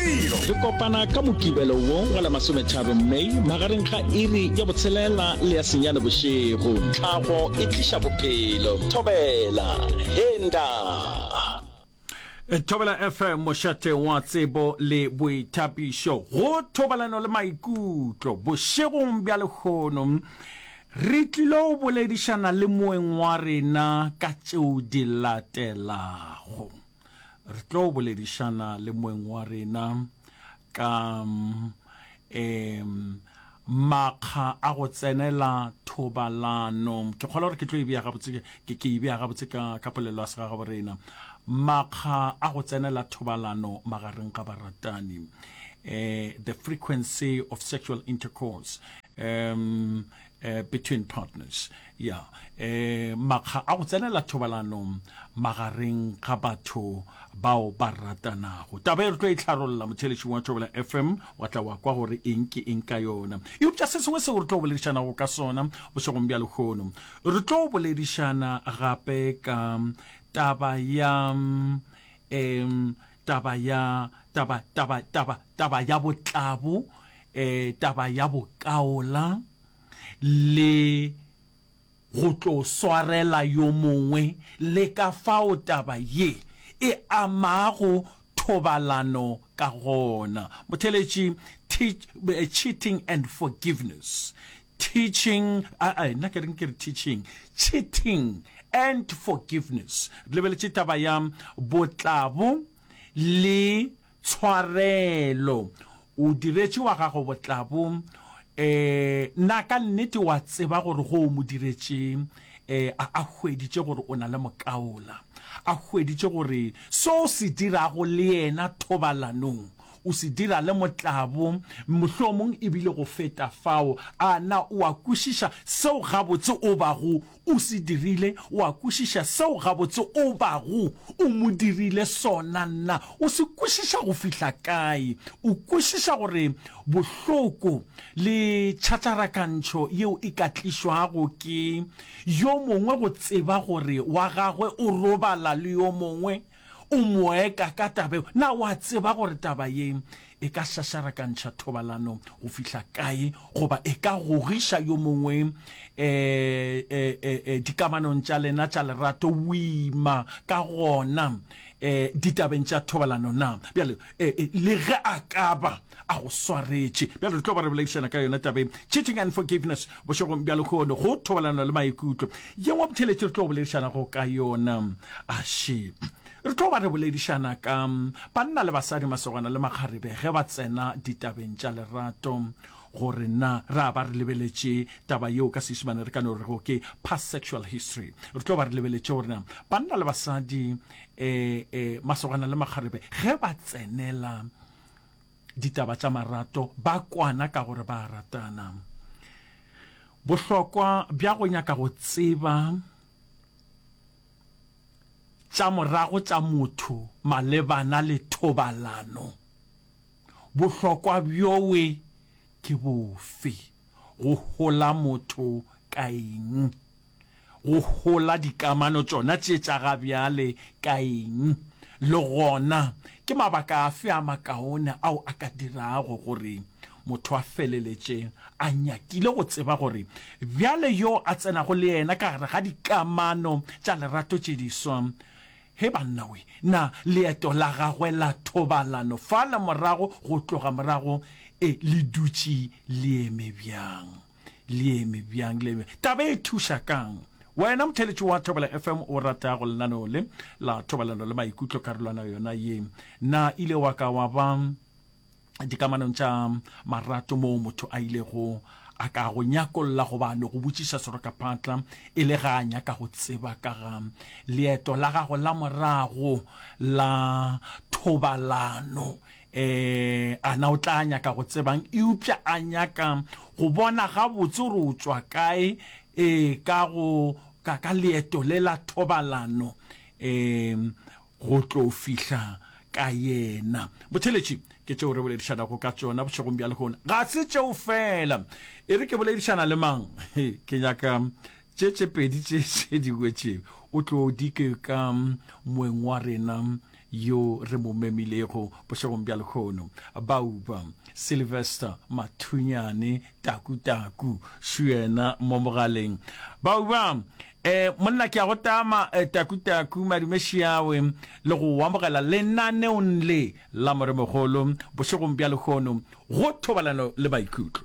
Re kopana ka Mokibelo wo wa la masometharo May magareng ga iri ya botshelela le ya senyane bošego. Tlhago e tliša bophelo. Thobela. Henda. Thobela FM mošate wa tsebo le boithapišo go thobalano le maikutlo bošegong bja lekgono re tlilo boledišana le moeng wa rena ka tšeo di latelago. Re tlo boledišana le moeng wa rena ka um makga a go tsenela thobalano ke kgolwa gore ke tlo e bea gabotse ke ke e bea gabotse ka ka polelo ya segagabo rena makga a go tsenela thobalano magareng ga baratani eh the frequency of sexual intercourse um Eh, between partners ya yeah. eh, makga a go tsenela thobalanong magareng ga batho bao ba ratanago taba e re tlo e tlharolola motheletšing wa thobela fm wa tla wa kwa gore eng ke eng ka yona eupša se sengwe seo re tlo boledišanago ka sona bošegong bja lekgono re tlo boledišana gape ka taba ya um taba ya, taba, taba, taba, taba ya botlabo, e, taba ya bokaola, le go tlo swarela yo mongwe, le ka fao taba ye e amago thobalano ka gona. Motheletši, teach, cheating and forgiveness. teaching a a nna ke reng ke re teaching cheating and forgiveness re lebeletše taba ya botlabo le tshwarelo o diretše wa gago botlabo eh na ka nnete wa tseba gore go o mo diretše eh a hweditše gore o na le mokaola a hweditše gore so se dirago le yena thobalanong O se dira le motlabo, mohlomong e bile go feta fao. A na o a kwešiša seo gabotse o bago o se dirile? O a kwešiša seo gabotse o bago o mo dirile sona na? O se kwešiša go fihla kae? O kwešiša gore bohloko le tšhatšarakantšho yeo e ka tlišwago ke yo mongwe go tseba gore wa gagwe o robala le yo mongwe? o moeka ka taba eo, na wa tseba gore taba ye e ka šašarakantšha thobalano go fihla kae goba e ka gogiša yo mongwe e, e, e, e, dikamanong tša lena tša lerato boima ka gona e, ditabeng tša thobalano na? Bjale e, e, le ge a ka ba a go swaretše bjale re tlo ba re boledišana ka yona tabeng cheating and forgiveness bošegong bja lekgono go thobalano le maikutlo yengwe botheletše re tlo boledišanago ka yona aše re tlo ba re boledišana ka banna le basadi masogana le makgarebe ge ba tsena ditabeng tša lerato gore na ra ba re lebeletše taba yeo ka seišimane re ka no rego ke past sexual history re tlo ba re lebeletše gore na banna le basadi um um masogana le makgarebe ge ba tsenela ditaba tša marato ba kwana ka gore ba a ratana. Bohlokwa bja go nyaka go tseba tša morago tša motho malebana le thobalano, bohlokwa bjoe ke bofe? Go hola motho ka eng? go hola dikamano tšona tše tša ga bjale ka eng, le gona ke mabaka afe a makaone ao a ka dirago gore motho a feleletše a nyakile go tseba gore bjale yo a tsenago le yena ka gare ga dikamano tša lerato tše diswa, he bannawe, na leeto la gagwe la thobalano fale morago go tloga morago e le dutše le eme bjang? le eme bjang le eme taba e thuša kang wena motheletši wa thobela fm o ratago lenaneo le la thobalano le maikutlo karolwana yona ye na ile wa ka wa ba dikamanong tša marato moo motho a ilego a ka go nyakolla goba no go botšiša serokaphatla e le ga a nyaka go tseba ka ga leeto la gago la morago la thobalano Ee, a na o tla nyaka go tsebang eupša a nyaka go bona gabotse gore o tšwa kae ee, ka go ka ka leeto le la thobalano ee, go tlo fihla ka yena. Botheletši ke tšeo re boledišanago ka tšona bošegong bja lehono. Ga se tšeo fela. E re ke boledišana le mang? Ke nyaka Tše tše pedi tše tše dingwe tše o tlo di ke ka moeng wa rena yo re mo memilego bošegong bja lekgono, Bauba, Sylvester, Mathunyane, Taku Taku, Šuyena mo mogaleng. Bauba, E, monna ke a go tama, e, Taku Taku, madume šiawe, le go amogela lenaneong le la Moremogolo bošegong bja lekgono go thobalano le maikutlo.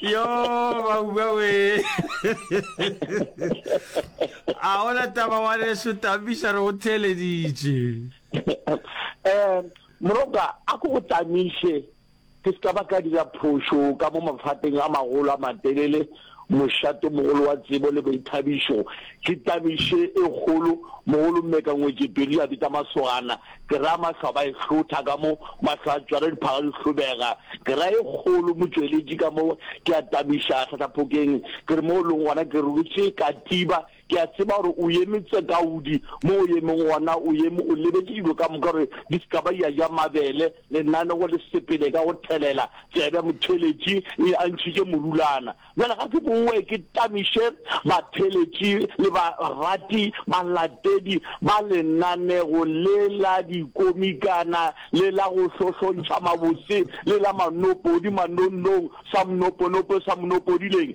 yo bauba we a ona taba wa leso tamisa re go theleditše um moroka a ko go tamiše ke se ka ba ka dira phošo ka mo mafateng a magolo a matelele Mošatomogolo wa tsebo le boithabišo ke tabiše e kgolo. Mogolo Mmeka Ngwetšepedi a bitsa masogana, ke ra mahlo a ba e hlotha ka mo, mahlo a tšwara diphaga di hlobega, ke ra e kgolo motšweletši ka mo, ke a tabiša hlahlaphokeng ke re mo o leng gona ke rutše Katiba, Ke a tseba gore o eme tsekaudi mo o emeng gona, o eme o lebetše dilo ka moka gore di se ka ba di a ja mabele. Lenanego le sepele ka go thelela, tsebe motheletši e a ntšhitše morulana. Bjale ga ke bowe ke tamiše batheletši le barati, balatedi, ba lenanego le la dikomikana le la go hlohlontšha mabotse le la manopodi, manonnong, sa mnoponopo, sa mnopodileng,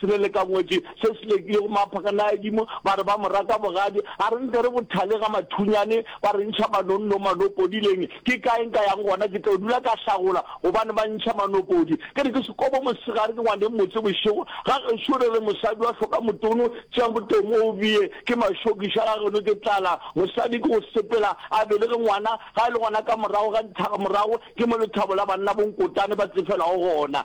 Se be le ka ngwetši se se lekilego maphakana a dimo, ba re ba mo raka bogadi. A re nke re bothale ga mathunyane, ba re ntšha manonno manopodileng. Ke kae nka yang gona? Ke tlo dula ka hlagola gobane ba ntšha manopodi. Ke re ke sekobo mosegare, ke ngwaneng motse bošego. Ga gešo re re mosadi wa hloka motono, tšea motomo o bee. Ke mašokiša ga geno ke tlala. Mosadi ke go sepela a belege ngwana, ga e le gona ka morago ga dithaga morago ke mo lethabo la banna bonkotane ba tsefelago gona.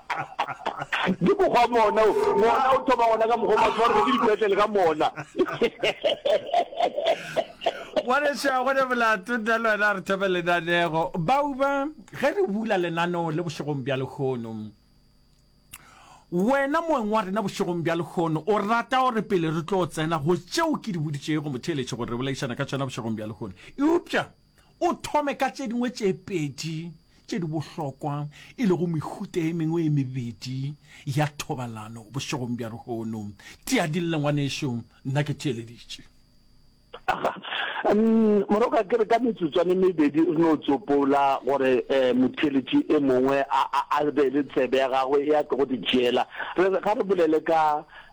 ke mokgwa mona mona o thoma gona ka mokgwa ma tshwarwe ke dipetlele ka mona ngwaneša gone bolato nna le wena re thome lenanego bauba ge re bula lenaneo le bošegong bja lekgono wena moeng wa rena bošegong bja lekgono o rata gore pele re tlo tsena go tšeo ke di boditšego motheeletše gore re bolaišana ka tšona bošegong bja lekgono eupša o thome ka tše dingwe tše pedi tše di bohlokwa, e lego mehuta ye mengwe e mebedi ya thobalano bošegong bja lehono. Tia dille, ngwanešu, nna ke theeleditše. Aha. Umm, moroka, ke re ka metsotswana e mebedi re no tsopola gore eh, motheeletši e mongwe a, a, a be le tsebe ya gagwe e a tlogo di tšeela. Re re ga re bolele ka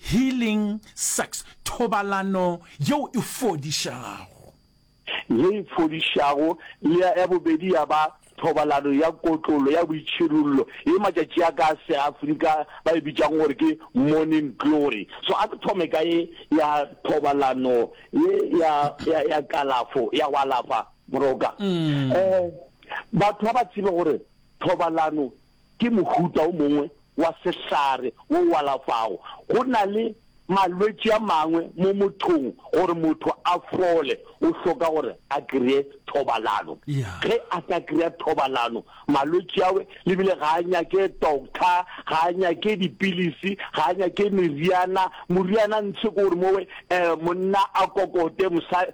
Healing sex, thobalano yeo e fodišago. Ye e fodišago, le ya ya bobedi ya ba thobalano ya kotlolo ya boitšhirollo, ye matšatši a ka a Seafrika ba e bitšago gore ke morning glory. So a re thome ka ye ya thobalano ye ya, ya, ya kalafo, ya go alafa, Moroka. Um batho ga ba tsebe gore thobalano ke mohuta o mongwe wa sehlare wo o alafago. Go na le malwetši a mangwe mo mothong gore motho a fole o hloka gore a kreye thobalano. Ge a ka kreya thobalano malwetši awe le bile ga a nyake doctor, ga a nyake dipilisi, ga a nyake meriana. Moriana ntshe ke gore mowe monna a kokote mosa.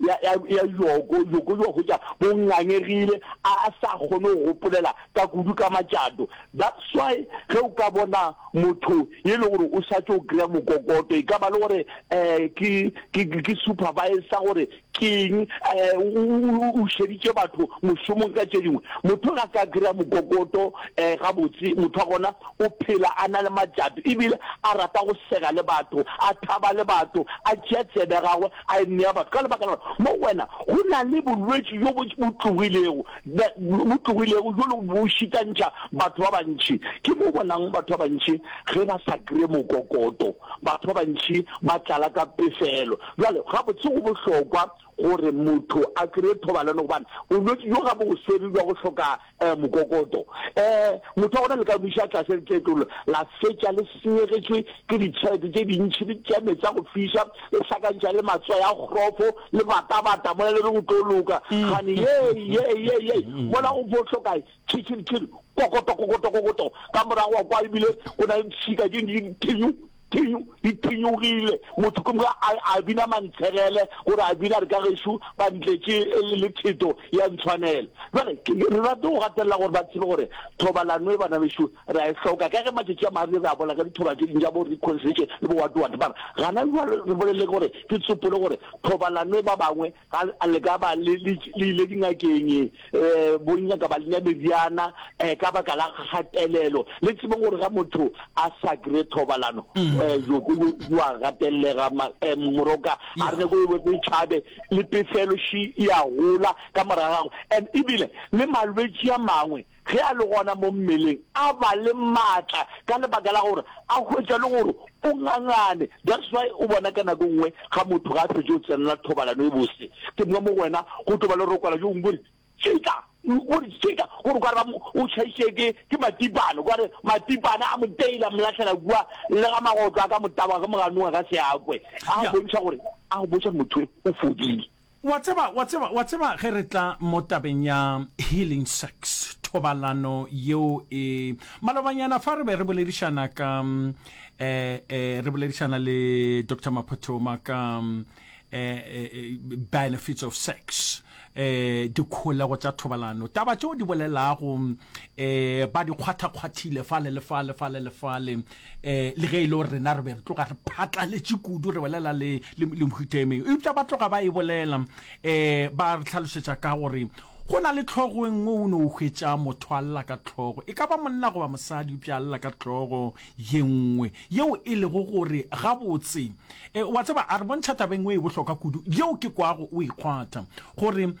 ya, ya, ya Yoko, Yoko yo hwetša o ngangegile, a sa kgone go gopolela ka kudu ka matšato. That's why ge o ka bona motho ye le gore o sa tšo kry-a mokokoto, e ka ba le gore um ke, ke, ke supervisor gore keng, um o, o šeditše batho mošomong ka tše dingwe. Motho ga ka kry-a mokokoto, um gabotse motho wa gona o phela a na le matšato, ebile a rata go sega le batho, a thaba le batho, a tšea tsebe ya gagwe A e nea batho, ka lebaka la gore mo go wena go na le bolwetši bjo bo tlogilego, bo tlogilego bjolo bo šitantšha batho ba bantši. Ke mo o bonang batho ba bantši ge ba sa kry-e mokokoto, batho ba bantši ba tlala ka pefelo. Bjale gabotse go bohlokwa gore motho a kry-e thobalano gobane bolwetši bjo ga bo go swere bja go hloka eh, mokokoto. Eh, motho wa gona le ka buša tlase letletlolo la fetša le senyegetšwe ke ditšhelete tše dintšhi le tša metsi a go fiša le hlakantša le matswa ya kgrofo le batabata mola le re go tlo loka gane ye ye ye ye mola go bohlokae tšhitšhilitšhili kokoto kokoto kokoto ka morago wa kwa ebile go na le tšhika tše dintšhi Phinyo e phinyogile, motho ke moka a, a bina mantshegele, gore a bina re ka gešo ba ntletše le theto ya ntshwanela. Jwale re rate go gatelela gore ba tsebe gore thobalano e bana bešo ra e hloka, ka ge matšatši a magareng re a bolela ka dithoba tše ding tša bo reconciliation le bo watiwati. Mara gana jwale re bolele gore ke tsopole gore thobalano e ba bangwe ga a le ka ba le le le ile dingakeng eh bonya ka ba le meriana eh ka baka la gatelelo le tsebeng gore ga motho a sa kry thobalano mm. eh yo go wa gatelega eh, moroka a re go bo be chabe le pefelo shi ya gola ka morago and ibile le malwetsi a mangwe ge a le gona mo mmeleng, a ba le maatla ka lebaka la gore a hwetša le gore o ngangane. That's why o bona ka nako e nngwe ga motho ga a fetše go tsenela thobalano e bose, ke mo mo wena go tlo ba le rokwala jo gongwe bo re tšika, bo re tšika gore kwa re ba mo o tšhaiše ke ke matipane, kwa re matipane a mo teila, a mo lahlela kua le ga magotlo a ka mo taboga ke mo ganoga ka seakwe, a go bontšha gore a go bontšha motho o fodile. Wa tseba, wa tseba, wa tseba, ge re tla mo tabeng ya healing sex, thobalano yeo e. Malobanyana fa re be re boledišana ka, eh, eh, re boledišana le Doctor Maphothoma ka, eh, eh, benefits of sex, eh, dikholego tša thobalano, taba tšeo di bolelago, eh, ba di kgwathakgwathile fale le fale, fale le fale, eh le ge e le gore rena re be re tloga re phatlaletše kudu re bolela le le mhutemeng eupša ba tloga ba e bolela um ba re tlhalošetša ka gore go na le tlhogo e nngwe o ne o hwetša motho a lla ka tlhogo e ka ba monna goba mosadi eupša a lla ka tlhogo ye nngwe yeo e lego gore gabotse e wa tseba a re bontšha taba engwe e bohloka kudu yeo ke kwago o e kgwatha gore um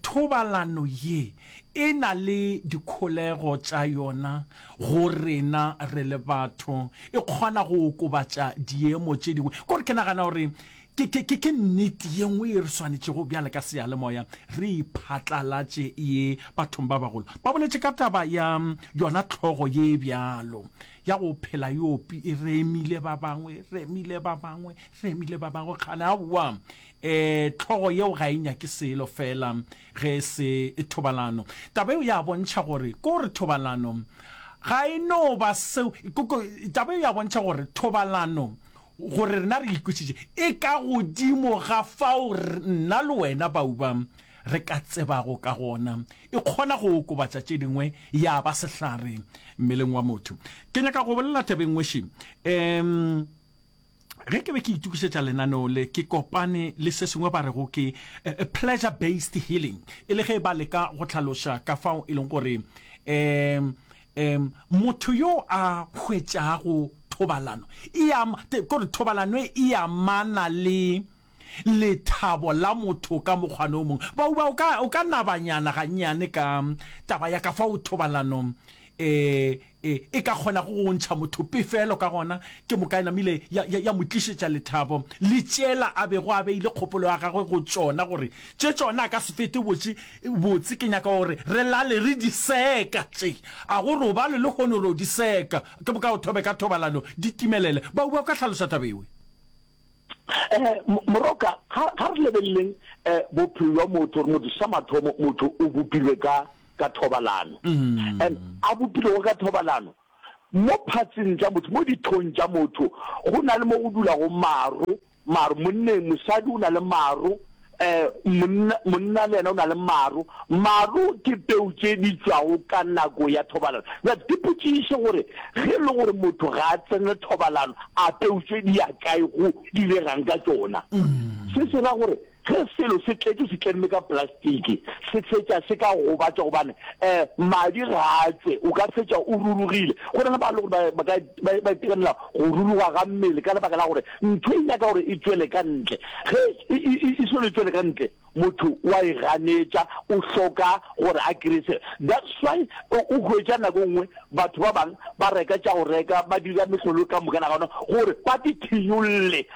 thobalano ye E na le dikholego tša yona go rena re le batho. E kgona go okobatša diemo tše dingwe. Kore ke nagana gore ke, ke, ke, ke nnete ye nngwe ye re swanetšego bjale ka seyalemoya re e phatlalatše ye bathong ba bagolo. Ba boletše ka taba ya yona tlhogo ye bjalo ya go phela yo pi, e remile ba bangwe, remile ba bangwe, remile ba bangwe. Kgane, aowa, eh, tlhogo yeo ga e nyake selo feela. ge e se thobalano. Taba eo ya bontšha gore ko re thobalano ga e no ba seo koko taba eo ya bontšha gore thobalano gore rena re ikwisitše e ka godimo ga fao nna le wena bauba re ka tsebago ka gona e kgona go okobatša tše dingwe ya ba sehlare mmeleng wa motho ke nyaka go bolela tabeng ngweši um ge ke be ke itokišetša lenaneo le ke kopane le se sengwe ba rego ke eh, pleasure based healing e le ge ba leka go tlhaloša ka fao e leng gore um um motho yo a hwetšago thobalano e ama kore thobalano e amana le lethabo la motho ka mokgwane o mongwe. Bauba, o ka, o ka nabanyana gannyane ka taba ya ka fao thobalano e, e, e ka kgonago go ntšha motho pefelo ka gona? Ke mokae namile ya, ya, ya mo tlišetša lethabo le tšela a bego a beile kgopolo ya gagwe go tšona, gore tše tšona a ka se fete botše, botse ke nyaka gore re lale re di seka tše, a go robalwe lehono re yo di seka, ke boka o thobe ka thobalano di timelele. Bauba, o ka hlaloša taba ewe? Eh, moroka ga ga re lebeleleng eh bophelo jwa motho gore motho sa mathomo motho o bopilwe ka ka thobalano mm. and a bopilego ka thobalano mo phatseng tsa motho mo dithong tsa motho go na le mo go dulago maro maro monneng mosadi o na le maro Eh, monna, monna le yena o na le maru. Maru ke peu tše di tšwago ka nako ya thobalano. That, ke potšiše gore ge e le gore motho ga a tsene thobalano, a peu tše di ya kae, go direga'ng ka tšona. Mm. Se se ra gore ge selo se tletše se tlemme ka plastiki se fetša se ka gobatša gobane um madi ga a tšwe o ka fetša o rurugile go na le ba le gore ba ka Ba, ba itekanela go ruruga ga mmele ka lebaka la gore ntho e nyaka gore e tšwele ka ntle. Ge e, e, e, e solo e tšwele ka ntle, motho wa e ganetša, o hloka gore a kreye se. That's why o, o hwetša nako e nngwe batho ba bang ba reka tša go reka, ba dira mehlolo ka moka nagana gore ba di thinyolle.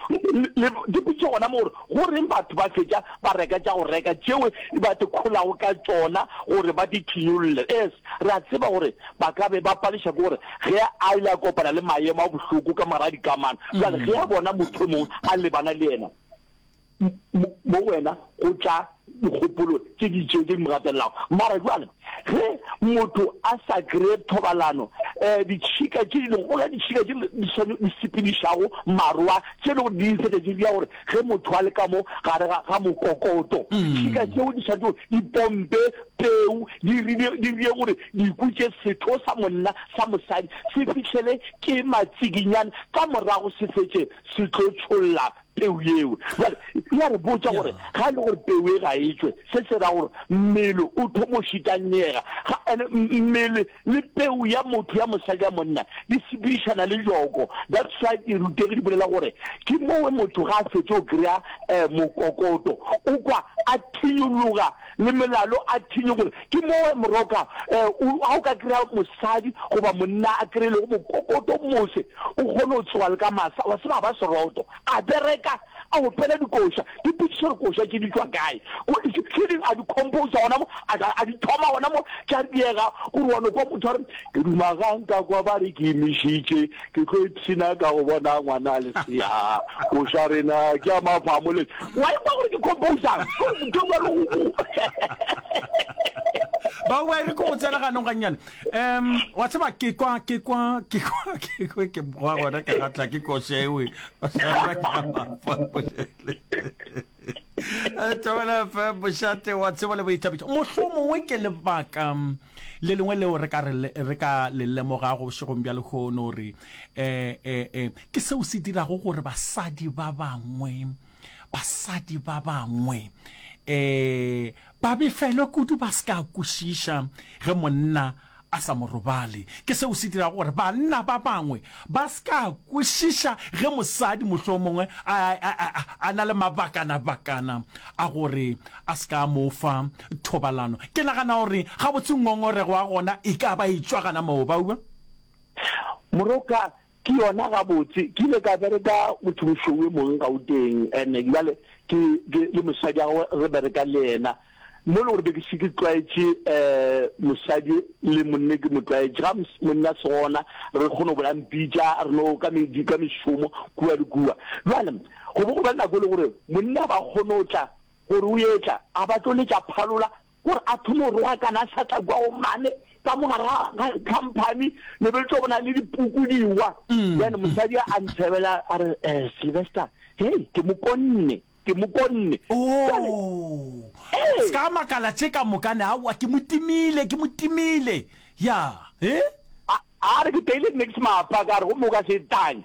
Le dipotšiša gona mo gore go reng batho ba fetša ba reka tša go reka tšeo ba di kholago ka tšona gore ba di thinyolle. Es. Re a tseba gore ba ka be ba paleša ke gore ge a ile a kopana le maemo a bohloko ka moraga dikamano, bjale ge a bona motho yo mongwe a lebana le yena, mo, mo wena go tla dikgopolo tše di itšego tše di mo gatelelago. Mara bjale ge motho a sa kreye thobalano, um ditšhika tše di lego go la ditšhika tše di, di sepedišago marwa, tše e lego di-insect tše di ya gore Ge motho a le ka mo gare ga, ga mokokoto, šika tšeo di swanetšego di pompe peu, di rile, di rile gore diku tše, setho sa monna, sa mosadi, se fihlele ke matsikinyana, ka morago se fetše se tlo tšholla peu yeo. Bjale, e a re botša gore ga e le gore peu e ga e tšwe, se se ra gore mmele o thomo šitanyega, ga, ene mmele le peu ya motho ya mosadi ya monna di sepedišana le joko. That's why dirutegi di bolela gore ke mowe motho ga a fetše go kry-a um mokokoto o kwa a thinyologa le melalo a thinyogole. Ke mowe moroka um ga o ka kry-a mosadi goba monna a kry-ilego mokokoto mose o kgone go tsoga le ka masa wa seba ba seroto a bereka A opela dikoša. Ke ipotšiša gore koša tše di tšwa kae. Ko, tše ding a di composa gona mo, a, a di thoma gona mo, tša diega, gore wa no kwa motho a re, Ke duma ga nka kwa ba re ke imišitše, ke tlo ipshina ka go bona ngwana lesea. Koša rena ke ya mafamo le. Wa e kwa gore ke composang? Ke ba re o. ba ba re ko go tsena ganong gannyane um wa tseba ke kwa ke kwa ke kwa ke kwa ke boa gona ka gatla ke košewe tšabela fe bošate wa tsebo le boithabišo mohlho mongwe ke lebaka le lengwe leo re ka le lemoga go bošegong bja lekgono gore um ke seo se dirago gore basadi ba bangwe basadi ba bangwe um ba befelwe kudu ba se ka kwešiša ge monna a sa mo robale, ke seo se dirago gore banna ba bangwe ba se ka kwešiša ge mosadi mohlomongwe a, a, a, a, a na le mabakanabakana a gore a se ka a mo fa thobalano. Ke nagana gore gabotse ngongorego ya gona e ka ba e tšwa gana moo, ba ua. Moroka, Ke yona gabotse, ke ile ka bereka mothong šou e mong Gauteng and bjale ke ke le mosadi wa gagwe re bereka le yena mo e le gore be ke se ke tlwaetše um mosadi le monne ke mo tlwaetše ga monne a se gona re kgone go bola mpitša re no ka medi ka mešomo kua le kua bjale go bo go ba nako e le gore monne a ba kgone go tla gore o etla a ba tlo letša phalola gore a thome go rogakana a sa tla kwago mane ka mogara ga company ne be tlo bona le dipuku diwa mm. then mosadi a ntshebela a re eh Sylvester hey ke mokonne ke mokonne oh eh. ska makala tse ka mokane a wa ke motimile ke motimile ya eh a re ke tele next mapa ka re go moka se tang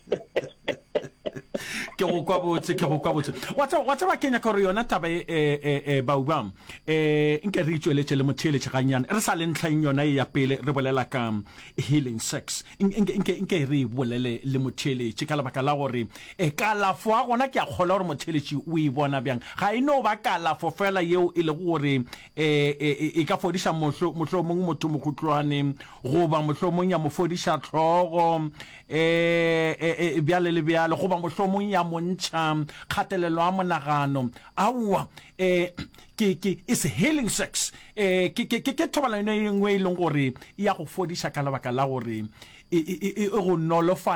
ke go kwa botse ke go kwa botse wa tsa wa tsa ba kenya gore yona taba e e e, e baubang e nke re itšweletse le motheeletše ganyane re sa le ntlheng yona e ya pele re bolela ka healing sex nke nke nke re e bolele le motheeletše ka lebaka la gore e kalafo a gona ke a kgola gore motheeletše o e bona bjang ga e no ba kalafo fela yeo e lego gore e, e, e, e ka fodiša mohlo mohlo mongwe motho mokhutlwane goba mohlo mongwe ya mo fodiša tlhogo e, e, e, e bjale le bjale goba mohlomong ya mo ntšha kgatelelo a monagano aowa e, ke ke is healing sex e, ke ke ke thobalano e nngwe e leng gore e ya go fodiša ka lebaka la gore e, e, e, e go nolofale